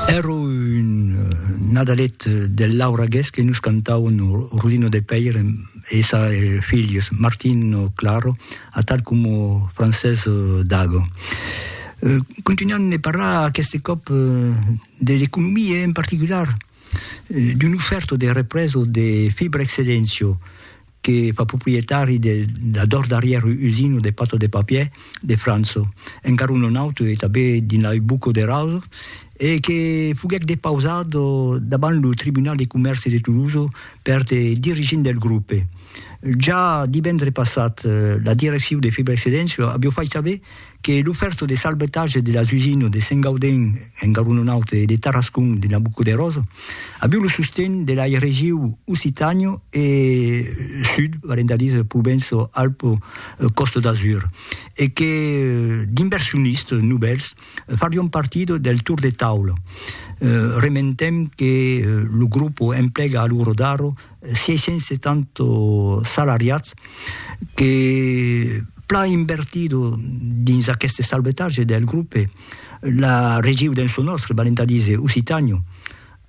Ero un nadalet del lauragués que nos cantauen Rudino de Pèire e sa filhos, Martino Claro, atal coma Francés Dago. Continuam de parlar aqueste còp de l'economia e en particular d'un ofèrto de represa de Fibra Excellencio, que fa proprietari de la dors darrièr usina de pata de papier de França, encara un non auto e tanben dins la rue Bucco de Raso, e que foguèc depausat davant lo tribunal de comèrci de Toulouse per de dirigents del grupe. Ja divendre passat, la direccion de Fibrexcedensio aviá fait saber que lo fèrto de salvetatge de las usines de Saint-Gaudens en Garonenaut e de Tarascon de Nabucoderós aviu lo sosten de lai regiu Occitània e Sud, valent a dire Provenço-Alpes-Costa d'Azur, e que d'inversionistes novèls farion partida del tour de taula. Rementem que lo grupo emplega a lo rodar 670 salariats que plan invertido dins aqueste salvetatge del grope, la regiu dens lo nòstre, valent a díser Occitània,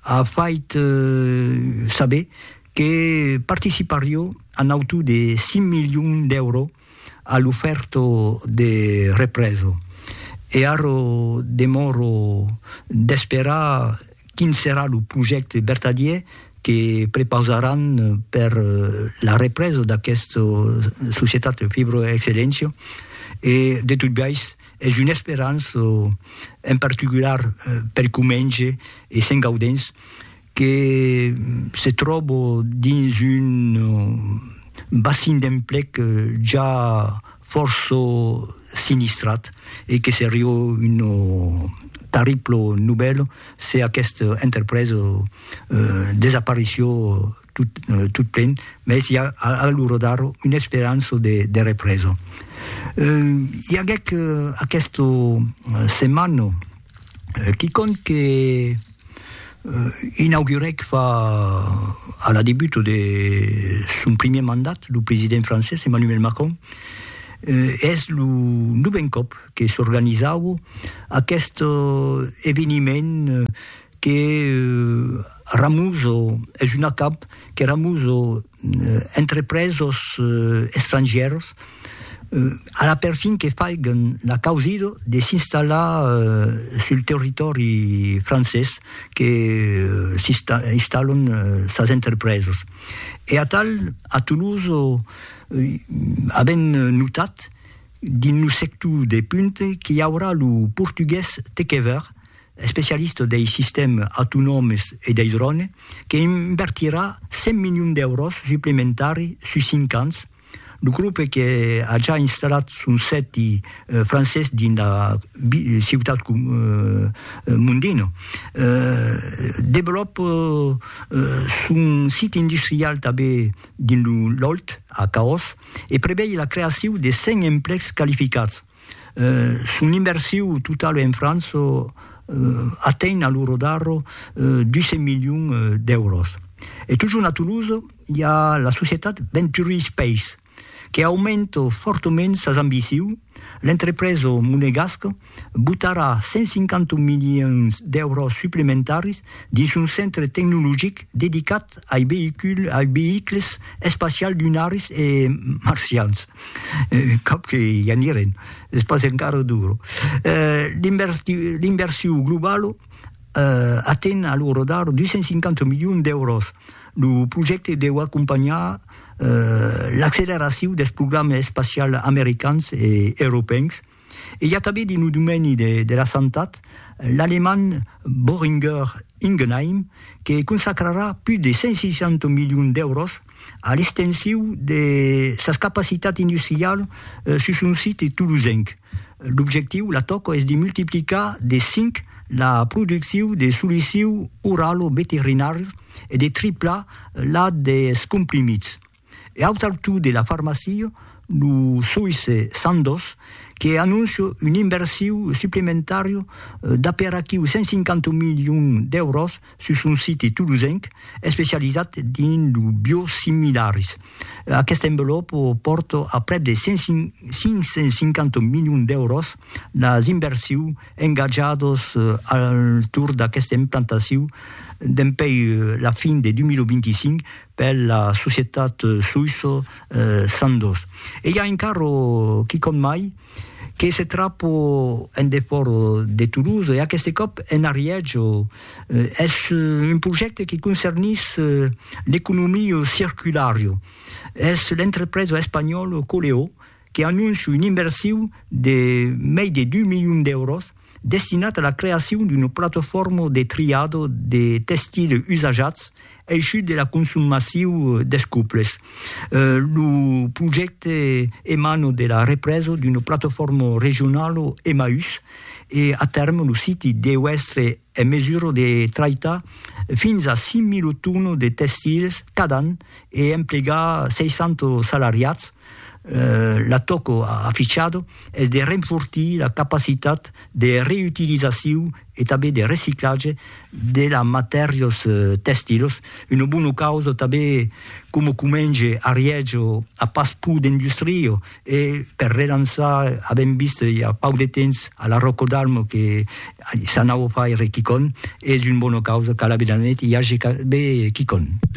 a fait saber que participarió a nautu de 5 milions d'èuros A l'ufèrto de represo. E arro demòro d'esperar quin serà lo projècte vertadier que prepausaràn per la represa d'aquesta societat Fibroexcellentia e de tot biais es una esperança en particular per Comenge e Sent Gaudens que se tròbo dins un bassin d'emplec ja fòrça sinistrat e que seriá una tarribla novèla se aquesta entrepresa desapareissiá tot plen, mès i a a l'ora d'ara una esperança de represa. I aguèc aquesta setmana quicòm que inaugurèc fa a la debuta de son primièr mandat lo president francés Emmanuel Macron, es lo novèn còp que s'organizaua aqueste eveniment que ramusa, es un acamp que ramusa entrepresos estrangièrs a la perfin que faiguen la causida de s'installar sul territòri francés que s'installan sas entrepresas. E atal a Toulouse avèm notat dins lo sector de punta qu'i aurà lo portugués te qué veire, especialista dei sistèmes autonòmes e dei drònes, que invertirà 100 milions d'èuros suplementari sus cinc ans, lo grope que a ja installat son sèti francés dins la ciutat Mondino, develòpa son sit industrial tanben dins lo Lòlt, a Caós, e prevei la creacion de 100 emplecs qualificats. Son inversiu totau en França atenh a lo rodarro 200 milions d'èuros. E totjorn a Toulouse i a la societat Venturi Space que aumenta fòrtament sas ambicius, l'entrepresa monegasca botarà 150 milions d'èuros suplementaris dins son centre tecnologic dedicat ai veïculs espacials lunaris e marcians. Cap que i anirem, es pas encara duro. L'inversion globala aten a lo rodar 250 milions d'èuros. Lo projècte deu acompanhar l'acceleracion dels programas espacials americans e europèus, E i a tanben dins lo domeni de la santat l'alemand Boehringer Ingelheim que consacrarà pus de 160 milions d'èuros a l'extensiu de sas capacitats industrialas sus son site tolosenc. L'objectiu, la tòca, es de multiplicar de 5 la produccion de solucius oralo-veterinàrias e de triplar la dels comprimits. E aut altu de la farmacia, lo soïsse Sandoz, que anóncia un inversiu suplementària d'aperaquiu 150 milions d'èuros sus son site tolosenc especializat dins lo biosimilaris. Aquesta envelòpa pòrta a prèp de 550 milions d'èuros las inversius engatjadas al torn d'aquesta implantaciu dempuèi la fin de 2025 per la societat Suisso Sandoz. E i a un carro, quicòm mai, que se trapo en defòrt de Toulouse, e aqueste còp en Ariège. Es un projècte que concernís l'economia circulara. Es l'entrepresa espanhòla Coleó. que anóncia un inversiu de mei de deu milions d'èuros destinat a la creacion d'una platofòrma de triado de testile usajats eishut de la consum massiu des cuples. Lo projècte emana de la represa d'una platofòrma regionala Emmaüs e a tèrme lo siti deu èstre en mesura de traitar fins a 5.000 tonas de testils cada an e emplegar 60 salariats, L'atòco afichado es de renfortir la capacitat de reütilizaciu e tanben de reciclatge de las matèrias tèxtilas, una bona causa tanben coma comenge a Riègia a pas pur d'industria e per relançar, avèm vist i a pauc de temps a la Ròca d'Alma que s'anava a faire quicòm, es una bona causa, cal aver de net, i age tanben quicòm.